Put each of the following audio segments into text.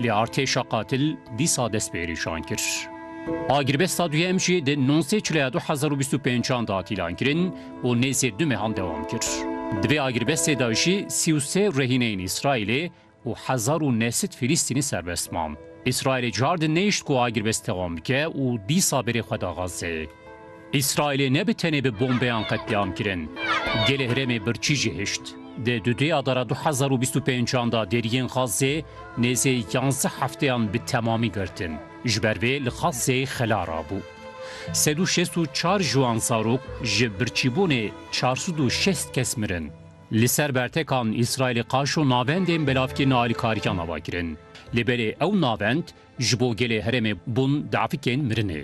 Lê artêşa qatil dîsa destpêrîşan kir. Agirbesta duyem jî di nûzdeh Çilaya du hezar û bîst û pênc an de hat îlan kirin û nêzî du mehan dewam kir. Di vê agirbestê de jî sî û sê rehîneyên Îsraîlê û hezar û neh sed Filîstînî serbest man. Îsraîlê car di nehişt ku agirbest dewam bike û dîsa berê xwe da Xazzeyê. Îsraîlê ne bi tenê bi bombeyan qetlîam kirin. Gelê herêmê birçî jî hişt. Di du duyadara du hezar û bîst û pêncan de deriyên Xazzê nêzê yanzdeh hefteyan bi temamî girtin. Ji ber vê li Xazzê xela rabû. Sed û şêst û çar ciwan zarok ji birçîbûnê çar sed û şêst kes mirin. Li ser bertekan Îsraîlê qaşo navendên belavkirina alîkariyan ava kirin. Lê belê ew navend Ji bo gelê herêmê bûn dafikên mirinê.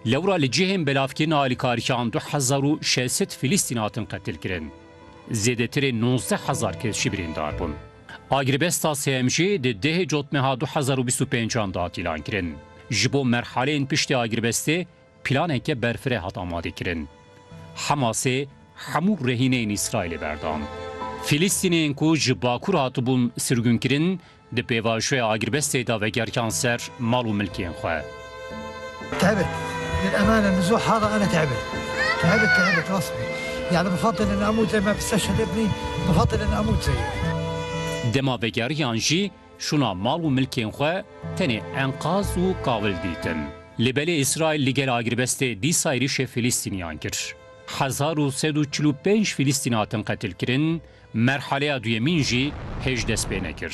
Lewra li cihên belavkirina alîkariyan du hezar û şeş sed Filistîn hatin qetilkirin. Zêdetirê nozdeh hezar kes jî birîndar bûn. Agirbesta sêyem jî di dehê cotmeha du hezar û bîst û pênc an da tîlan kirin. Ji bo merhaleyên piştî agirbestê planeke berfireh hat amadekirin. Hemasê hemû rehîneyên Îsraîlê berdan. Filistîneyên ku ji bakur hatibûn sirgûnkirin Di pêvajoya agirbestê de vegertiyan ser mal û milkên xwe. Tevir, li emane li zo hara ene tevir. Tevir tevir rast bî. Yanî bi fate li namûze me bi se şede binî bi fate li namûze ye. Dema vegeriyan jî şûna mal û milkên xwe tenê enqaz û kawil dîtin. Lê belê Îsraîl li gel agirbestê dîsa êrîşê Filîstîniyan kir. Hezar û sed û çil û pênc Filîstîn hatin qetilkirin, Merhaleya duyemîn jî hêj dest pê nekir.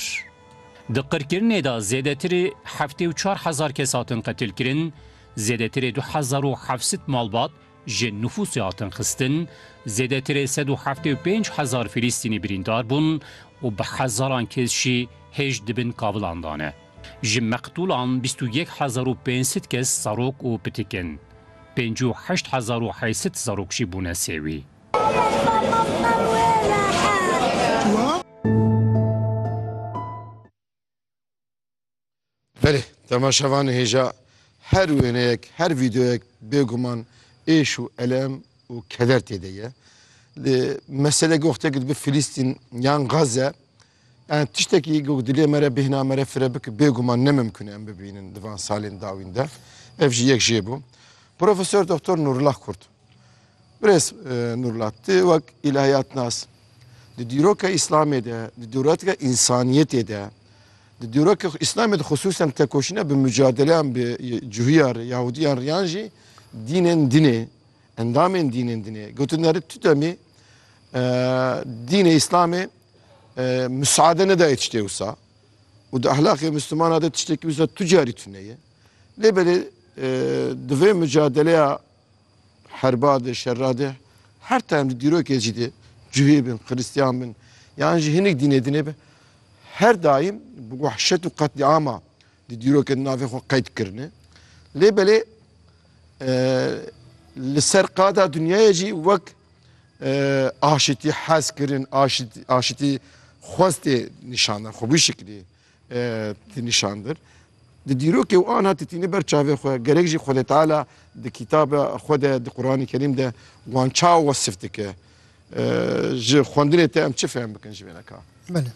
Di qirkirinê de zêdetirê heftê û çar hezar kes hatin qetilkirin, zêdetirê du hezar û heft sed malbat ji nifûsê hatin xistin, zêdetirê sed û heftê û pênc hezar Filîstînî birîndar bûn û bi hezaran kes jî hêj di bin kavilan de ne. Ji meqtûlan bîst û yek hezar û pênc sed kes zarok û pitik in. Pêncî û heşt hezar û heyt sed zarok jî bûne sêwî. Belê temaşevanê hêja her wêneyek, her vîdeoyek bêguman êş û elem û keder tê de ye. Lê mesele goxtekî dibe Filîstîn yan Gaze Tiştekî ku dilê me re bêhna me re fire bike bêguman ne mimkun e em bibînin di van salên dawîn de. Ev jî yek jê bû. Profesor Doktor Nûrullah Kurt. Birêz Nûrullah ti wek îlahiyatnas di dîroka Îslamê de, di dîroka însaniyetê de, di dîroka Îslamê de xusûsen tekoşîna bi mucadeleyan bi cihûya re, Yahudiyan re yan jî dînên din ê, endamên dînên din ê. Gotindarî tu demê dînê Îslamê Misade nedaye tiştê wisa. Û di ehlaqê Mislumana de tiştekî wisa tu carî tune ye. Lê belê di vê micadeleya herba de şerra de her time di dîrokê jî de cihê bin, xiristiyan bin yan jî hinek dînê dine be her daîm bi wehşet û qetlîama di dîrokê di navê xwe qeyd kirine. Lê belê li ser qada dinyayê jî wek aşitî hez kirin, aşitî aşitî xwestê nîşandan xwe wî şiklî tî nîşandir. Di dîrokê û anha titîne ber çavê xwe gerek jî Xwedê Teala di kîtabe xwe de di Quranê Kerîm de wan ça wesif dike. Ji xwendinê te em çi fehm bikin ji vêneka? Belê.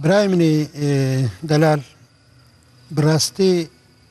Birayê min ê delal bi rastî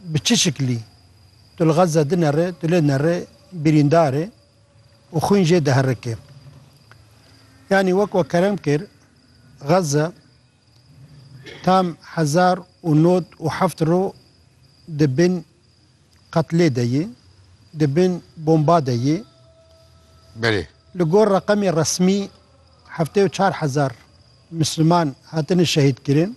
bi çi şiklî tu li Gaza dinere, tu lê nere birîndar î û xwîn jê diherike. Yanî wek we kerem kir, Gaza tam hezar û nod û heft roj di bin qetlê de yê, di bin bomba de yê. Belê. Li gor reqemê resmî heftê û çar hezar Misliman hatine şehîdkirin.